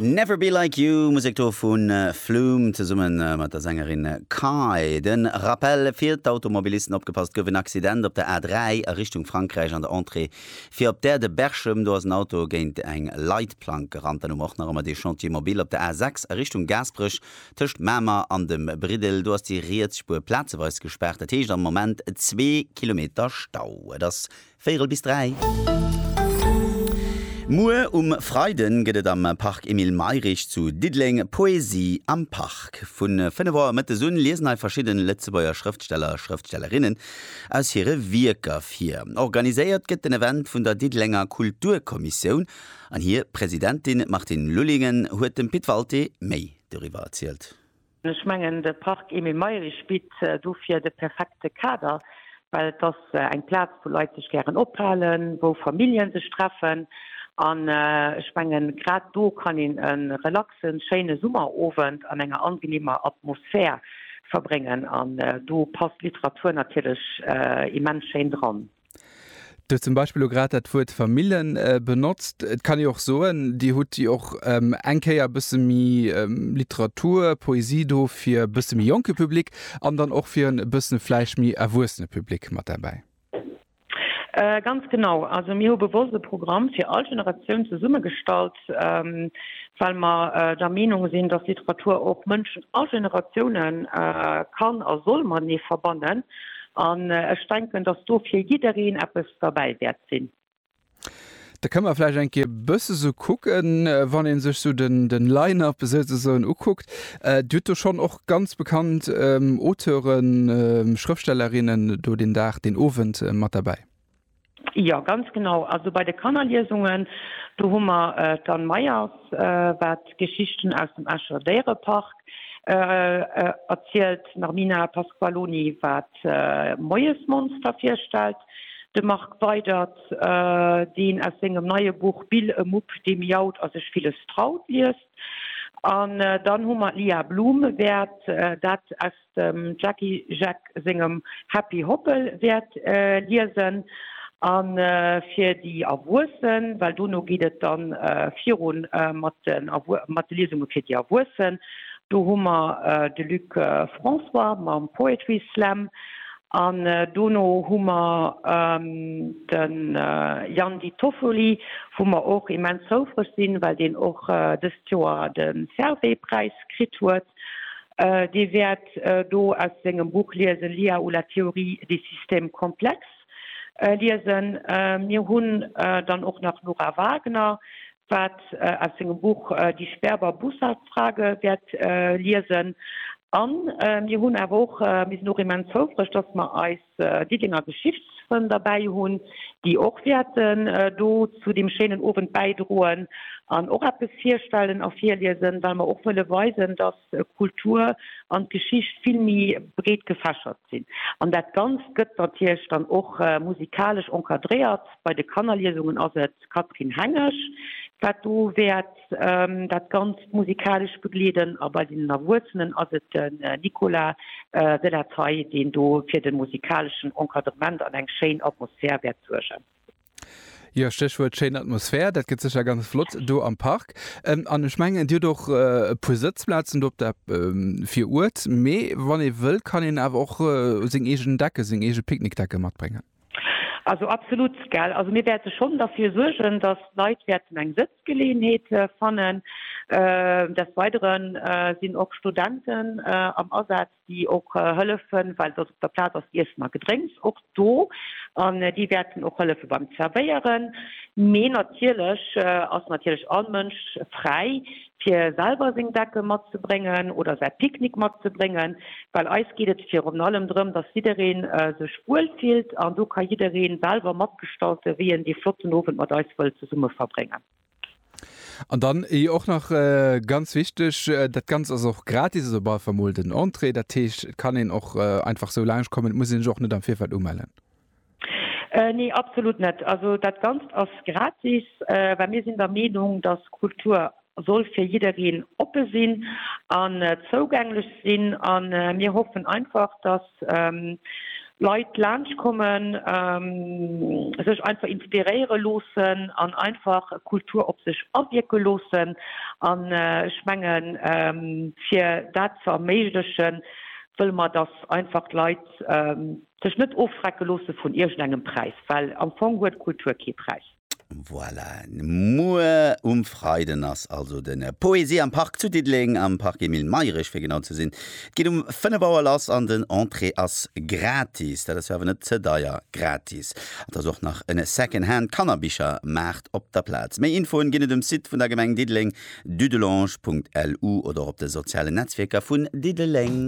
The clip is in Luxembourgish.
Never Be Like You, Musek do vu Flume zesumme mat der Sängerin Kai. De Rappell fir d'Automobilisten, opgepasst, gouf en Accident op der A3 a Richtung Frankräich an der Entrée fir op d'Aire de Berchem. Do ass en Auto géint eng Leitplank gerannt. Dann hu mer och nach ëmmer dee Chantier mobile op der A6 a Richtung Gaasperech tëscht Mamer an dem Briddel. Do ass déi riets Spuer plazeweis gespaart, dat heescht am Moment zwee Kilometer Stau. Et ass Véirel bis dräi. Muer um Freiden gëtt et am Park Emile Mayrisch zu Diddeleng Poesie am Park. Vu 5 Auer mëttes un liesen hei verschidden Lëtzebuerger Schrëftsteller a Schrëftstellerinnen aus hire Wierker vir. Organiséiert gëtt den Event vun der Diddelenger Kulturkommissioun an hir Presidentin Martine Lullingen huet dem Pit Walté méi doriwwer erzielt. Ech mengen, de Parc Emile Mayrisch bitt dofir de perfekte Kader, well et ass eng Plaz, wou Leit sech gären ophalen, wou Famillje sech treffen. An ech menge grad do kann een e relaxe schéine Summerowend an enger angenehmer Atmosphär verbréngen. An do passt Literatur natierlech immens schéin dran. Du hues zum Beispill elo grad dat Wuert Famille benotzt. Et kann ee jo och soen, Dir hutt jo och eng Kéier e bësse méi Literatur, Poesie do fir e bësse méi jonke Public an dann och fir en e bësse vläicht méi erwuessene Public mat derbäi. Ganz genau. Also mir hu bewosst e Programm fir all Generatioun zesummegestallt, Gesetz, well mer der Meenung sinn, dass Literatur och Mënschen a Generatioune kann a soll matenee verbannen. An ech denken, dass do fir jiddereen eppes derbäi wäert sinn. Da kënne mer vläicht eng Kéier e bësse sou kucken, wann ee sech sou den Line-up souzesoen ukuckt. Dir hutt do schonn och ganz bekannt Auteuren, Schrëftstellerinnen do deen Dag, deen Owend mat derbäi. Jo, ganz genau. Also bei de Kannerliesungen, do hu mer d'Anne Meyers, wat Geschichten aus dem Escher Déierepark erzielt, d'Narmina Pasqualoni, wat Moiesmonster virstellt, de Marc Weydert, deen aus sengem neie Buch Bill, e Mupp, dee miaut a sech villes traut, liest. An dann hu mer d'Lia Blume, wäert dat aus dem Jacky Jeck sengem Happy Hoppel wäert liesen an fir déi Erwuessen, well dono geet et dann virun mat den mat de Liesunge fir déi Erwuessen. Do hu mer de Luc François mam Poetry Slam an dono hu mer den Jan Di Toffoli, wou mer och immens houfreg sinn, well deen och dëst Joer de Servais Präis kritt huet. Dir wäert do aus sengem Buch liesen, L'IA ou la théorie des systèmes complexes liesen. Mir hunn dann och nach d'Nora Wagner, wat aus sengem Buch Die Sperber-Bussard-Frage wäert liesen. A mir hunn awer och, mir sinn och immens houfreg, dass mer eis Diddenger Geschichtsfrënn derbäi hunn, déi och wäerten do zu deem schéinen Owend bäidroen an och eppes virstellen a virliesen, well mer och wëlle weisen, datt d'Kultur an d'Geschicht vill méi breet gefächert sinn. An dat Ganzt gëtt natierlech dann och musikalesch encadréiert. Bei de Kannerliesungen ass et d'Catherine Hengesch, wat do wäert. Dat Ganzt musikalesch begleeden, a bei den Erwuessenen ass et den Nicolas de la Taille, deen do fir de musikaleschen Encadrement an eng schéin Atmosphär wäert suergen. Jo, Stéchwuert schéin Atmosphär, dat gëtt sécher ganz flott do am Park. An ech mengen, Dir hutt och e puer Sëtzplazen do op der Viruert, mee wann ee wëll, kann een awer och seng eegen Decke, seng eege Picknickdecke matbréngen. Also absolut gell. Also mir wäerte schonn derfir suergen, datt d'Leit wäerten eng Sëtzgeleeënheet fannen. Des Weidere sinn och Studenten am Asaz, déi och hëllefen, well datt op der Plaz ass Iessen a Gedrénks och do an déi wäerten och hëllefe beim Zerwéieren. Mee natierlech ass natierlech all Mënsch fräi fir selwer seng Decke matzebréngen oder säi Picknick matzebréngen, well eis geet et virun allem drëm, dass jidderee sech wuel fillt an do ka jidderee selwer matgestalte wéi en dee flotten Owend mat eis wëll zesumme verbréngen. An dann och nach ganz wichteg, dat Ganzt ass och gratis, also bal, emol den Entrée, dat heescht et kann een och einfach esou laanscht kommen, et muss een sech och net am Virfeld umellen. Nee, absolut net. Also dat Ganzt ass gratis, well mir sinn der Meenung, dass Kultur soll fir jiddereen oppe sinn an zougänglech sinn. A mir hoffen einfach, dass Leit laanscht kommen, sech einfach inspiréiere loossen an einfach Kultur op sech awierke loossen. An ech mengen, fir dat ze erméiglechen, wëlle mer, dass einfach d'Leit Sech net ofschrecke loosse vun iergendengem Präis, well am Fong huet Kultur kee Präis. Voilà, muer um Freiden ass also de Poesie am Park zu Diddeleng, am Parc Emile Mayrisch fir genau ze sinn. Et geet um 5 Auer lass an den Entrée ass gratis. Dat ass jo awer net ze deier gratis. An et ass och nach en Second-Hand Kannerbichermaart op der Plaz. Méi Infoen ginn et um Site vun der Gemeng Diddeleng, dudelange.lu, oder och op de sozialen Netzwierker vun Diddeleng.